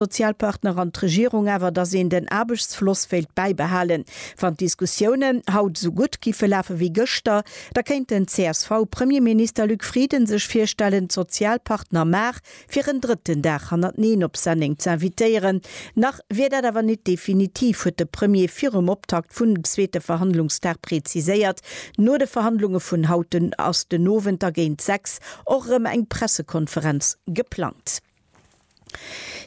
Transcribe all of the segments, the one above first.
Sozialpartner an d'Regierung awer, datt een den Aarbechtsfloss wéilt bäibehalen. Wann d'Diskussiounen haut esou gutt giffe lafe wéi gëschter, da kéint den CSV-Premierminister Luc Frieden sech virstellen, d'Sozialpartner mar fir en drëtten Dag hannerteneen op Senneng z'invitéieren. Nach wier dat awer net definitiv, huet de Premier virum Optakt vun dem zweete Verhandlungsdag preziséiert. No de Verhandlunge vun haut ass den Owend da géint 6 och erëm eng Pressekonferenz geplangt.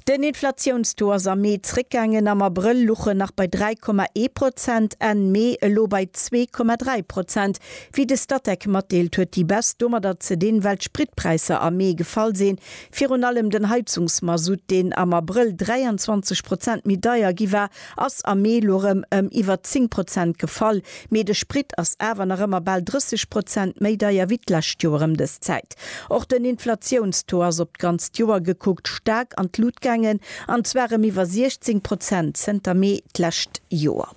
Den Inflatiounstaux ass am Mee zréckgaangen, am Abrëll luch en nach bei 3,1 Prozent, Enn Mee elo bei 2,3 Prozent. Wéi de Statec matdeelt, huet déi Baisse domadder ze dinn, well d'Spritpräisser am Mee gefall sinn, virun allem den Heizungsmasutt, deen am Abrëll 23 Prozent méi deier gi war, ass am Mee lo rem em iwwert 10 Prozent gefall, mee de Sprit ass awer nach ëmmer bal 30 Prozent méi deier wéi d'lescht Joer em des Zäit. Och den Inflatiounstaux ass op d'ganzt Joer gekuckt staark an d'Lut gaangen, an zwar em iwwer 16 Prozent zënter Mee d'lescht Joer.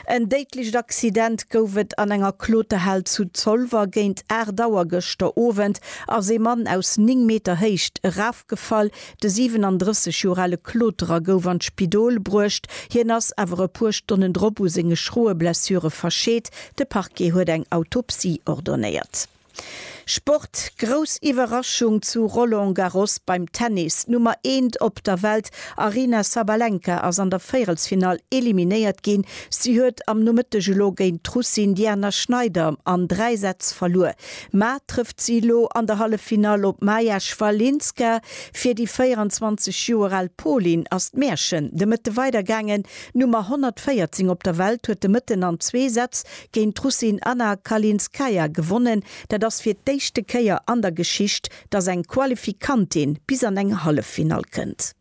En déidlecht Accident gouf et an enger Kloterhal zu Zolwer. Géint 8 Auer gëschter Owend ass ee Mann aus 9 Meter Héicht eraf. Gefall. De 37 Joer ale Kloterer gouf an d'Spidol bruecht, hien ass awer e puer Stonnen drop u senge schroe Blessure verscheet. De Parquet huet eng Autopsie ordonnéiert. Sport, Grouss Iwwerraschung zu Roland Garros beim Tennis, d'Nummer eent op der Welt Aryna Sabalenka ass an der Véierelsfinall eliminéiert ginn. Si huet am Nomëtteg elo géint d'Russin Diana Schneider an dräi Sätz verluer. Mar trëfft si elo an der Halleffinall op d'Maja Schwalinska. Fir déi 24 Joer al Polin ass d'Märchen de Mëtte weidergaangen. D'Nummer 114 op der Welt huet de Mëtten an zwee Sätz géint d'Russin Anna Kalinskaya gewonnen. Dat ass fir d'éischte Kéier an der Geschicht, datt eng Qualifikantin bis an eng Halleffinall kënnt.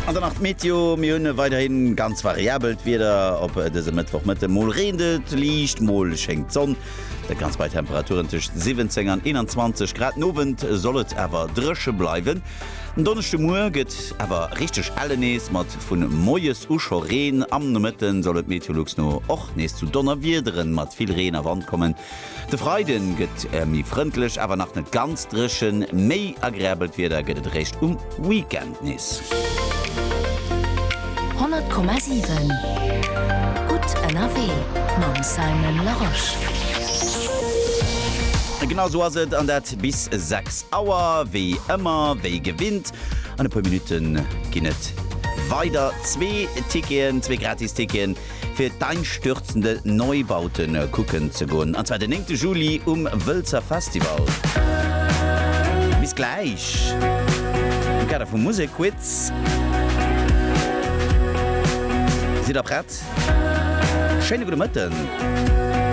An dann nach d'Meteo, Mir hunn weiderhi ganz variabelt Wieder op dësem Mëttwochmëtte. Mol reent et liicht, mol schéngt d'Sonn. Dat Ganzt bei Temperaturen tëscht 17 an 21 Grad. Den Owend soll et awer dréche bleiwen. Den Donneschdemuer gëtt awer richteg elle nees, mat vu moies u scho Reen. Am Nomëtte soll et Meteolux no och nees zu Donnerwiederen mat vill Reen a Wand kommen. De Freiden gëtt mi frëndlech, awer nach net ganz dréchen. Méi agreabelt Wieder gëtt et eréischt um Weekend nees. 100,7 gutt ënnerwee mam Simon Larosche. Genau sou ass et, an dat bis 6 Auer wéi ëmmer, wéi gewinnt. An e puer Minutte ginn et weider. Zwee Ticketen, zwee gratis Ticketen. fir d'einstürzende Neubauten kucken ze goen, an zwar den 9 Juli um Wëlzer Festival. Bis gläich am Kader vum Musekquiz. Sidd der prett? Schéine gudde Mëtten.